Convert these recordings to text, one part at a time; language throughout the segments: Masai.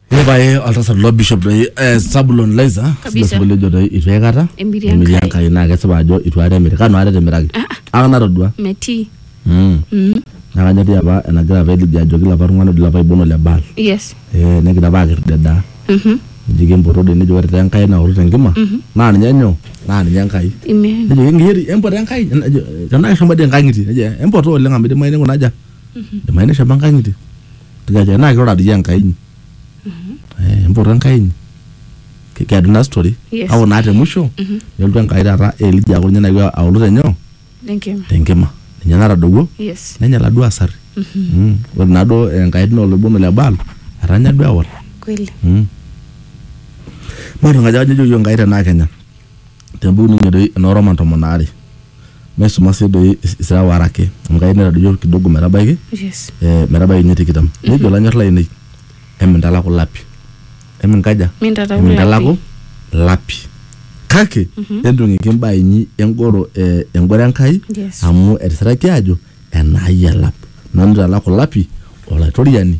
Epae oltasat lo bishop doi eh, Sabulon Laiza sile Kabisa. sinkoliojo doi itu aikata Emiri Emiri Enkai. Enkai naa kesipa ajo itu aikata emiri kanu aikata etimiraki aka natodua metii Mm. naa kanyorri apa enagira apa Elijah ajoki lapa tung'anak doi lapa ibono le Baal yes Eh, negira apa akirr dedaa Mhm. nejoki empoto doi nejo ore taa Enkai naoru tenkima naa ninye nyoo naa ninye Enkai Amen. nejo engeri empoto Enkai Nejo, tenaa keshomo dii enkang'itie nejo empoto oleng amu idimayu ninguna aja imaanisha apa enkanyit tikaji enaa kirura dii enkai inyi Eh, empoto enkai inyi Ki- keedu ina story Yes. au naa te musho nelotu enkai taata elija aaku ninye nayewuo aulu tenyoo Enkima. tenkima ninye natadowuo Yes. nenya laduo asari Mm. ore naaduo enkai naa oloibon le baal etanya duo ewal Kweli. Mm. maata enkaji ajo ejo yiok enkai tenaa kenya tempukunoinye doi enoo Roman tomon aare maisuma sii doi isira waare ake amu kayieu naitadoyio kidogo metabaiki yes eh, metabaiki ninye tikitam Mhm. nejo lanyor lainei emintalaku lapi eminkaja Mintalaku emintalaku lapi kake Mhm. entung'iki imbaa inyi engoro eh, engoro Enkai yes amu etisiraki aajo enaai elap nanu italaku lapi olaitoriani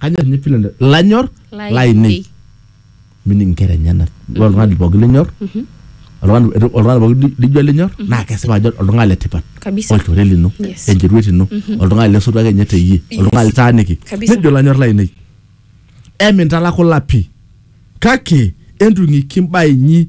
kanyor ninye pilo le- lanyor Lainei. lainei mini nkera enyenak ore oltung'ani pooki linyor oltung'ani oltung'ani pooki li- lijo elinyor naa kesipa ajo oltung'ani le tipat Kabisa. olchore lino Yes. encheruet ino oltung'ani lesotu ake ninye teyie oltung'ani litaaniki Kabisa. nejo lanyor lainei emintalaku lapi kake entung'iki mbaa inyi